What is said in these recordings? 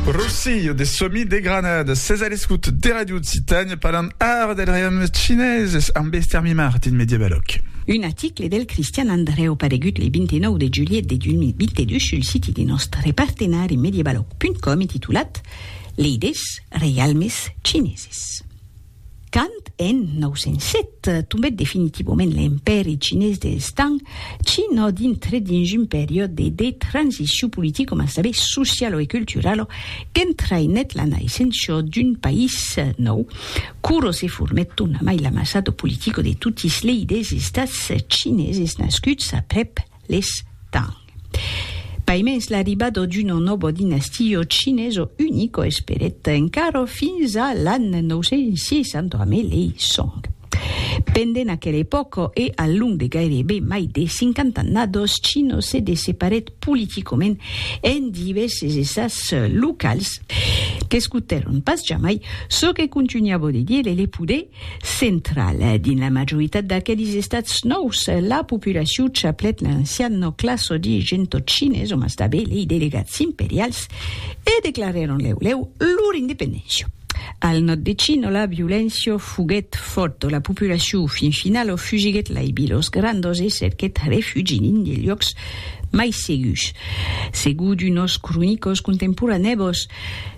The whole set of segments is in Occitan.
Rosillo de Somi de Granada, ses a l'escut de Radio Occitània parlant ara del reialme chineses amb Ester Mimart dins Mediabalòc. Un aticle del Cristian Andrèu paregut le 29 de julhet de 2022 sul siti de nòstre partenari Mediabalòc.com e titulat Leidés reialmes chineses. Quand en 907 tombèt definitivament l'Empèri Chinés dels Tang, China dintrèt dins un periòde de transicion politica mas tanben sociala e culturala qu'entraïnèt la naissença d'un país nòu. Quora se formèt tornamai l'amassada politica de totis lei des estats chineses nascuts aprèp Les Tang. Paimens l'arribado d'uno nobo dinastio chineso unico esperèt encaro fins a l'an 960 ame lei Song. Pendent aquel epòco e al long de gairebe mai de cinquant'annados Chino se desseparèt politicoment en divèses estats locals qu'escotèron pas jamai çò que contunhavo de dire le poder Central. Dins la majoritat d'aquelis estats nòus, la populacion chaplèt l'ancian nòcla sòdi gentotchines, òmas tabé lei delegats imperials, e declarèron lèu lèu lor independéncia. Al nòd de Chino, la violéncia foguèt fòrta, la populacion fin finala fugiguèt lai vilas grandas e cerquèt refugi dins de luòcs mai segurs. Segur d'unos cronicors contemporanèbos,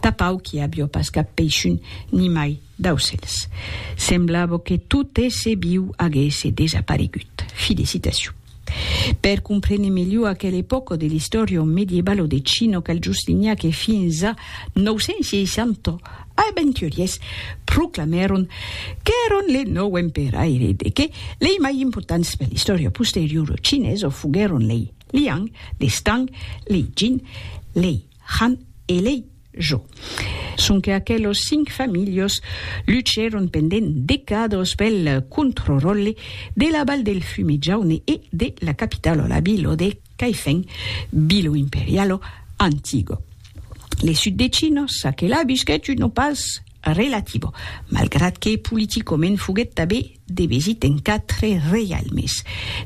Tapau qu'i avió pas cap peishun, nimai d'aucèls. Semblavo que tot èsser viu aguèsse desaparegut. Fi de citacion. Per comprene melhor aquel epòco de l'istòria o medievalo de Chino cal just linhar que fins a 960 aventuriers proclamèron qu'èron le nòu emperaire de que lei mai importants per l'istòria posteriora chinesa foguèron lei Liang, lei Stang, lei Jin, lei Han elei jo. Sonque aquelos cinc familhos luchèron pendent decados pel controròlle de la Val del Fume Jaune e de la capitalo, la Bilo de Caifèn, Bilo Imperialo Antigo. Le sud de Chino çaquelà visquèt un opàs relativo, malgrat que politicament foguèt tabé de visit en quatre reialmes.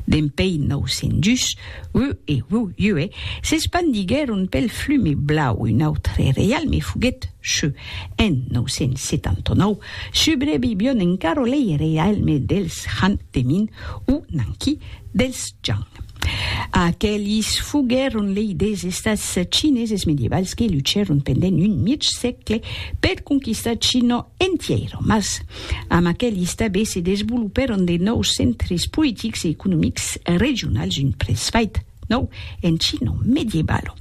Dempei 902, Wu e Wu Yue s'espandiguèron pel Flume Blau, un autre reialme foguèt Shu. En 979, subrevivion encara lei reialmes dels Han de Min o Nanqi dels Zhang. Aquelis foguèron lei des estats chineses medievals que luchèron pendent un mièg sègle per conquistar China entièra, mas Amb aquel istabe se desvolopèron de nòus centres politics e economics regionals un presvait nòu en chino medieval.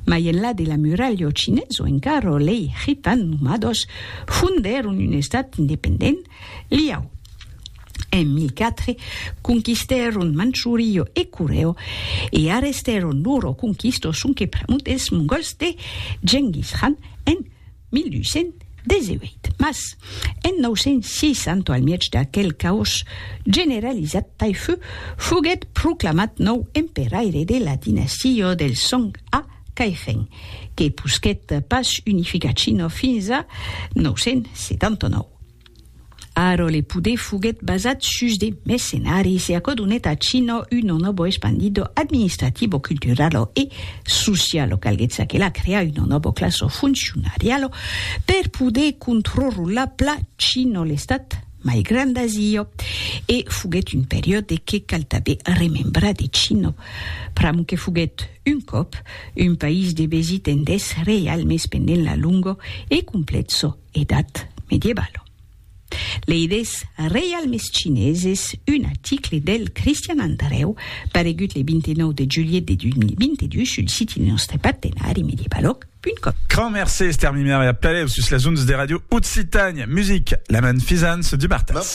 Mai enlà de la muralha o chinés o encara lei khitan nomados fondèron un estat independent, Liao. En 1004 conquistèron Manchurio e Coreo e arrestèron loro conquistos sonque pr'amont dels mongòls de Genghis Khan en 1218, mas en 906, anto al mièg d'aquel caos generalizat, Taifu foguèt proclamat nòu emperaire de la dinastia del Song a Kaixing, que posquèt pas unificar China fins a 979. Arò le poder foguèt basat sus de mercenaris e aquò donèt a Chino un onobo espandido administrativo, culturalo e socialo. Calguèt çaquelà crear un onobo classo funcionarialo per poder controrrolar pla Chino l'estat mai grand d'Asia. E foguèt un periòde que cal tanben remembrar de Chino pr'amor que foguèt un còp un país de besi tendés reial mès pendent la longor e complètso Edat medievalo. Leides reialmes chineses un aticle del Cristian Andrèu paregut le 29 de julhet de 2022 sul siti de nòstre partenari Medievaloc punt com. Crant mercé Esther Mimer e a pelèu sus las ondes de Radio Occitània Music, la manfisance du martès.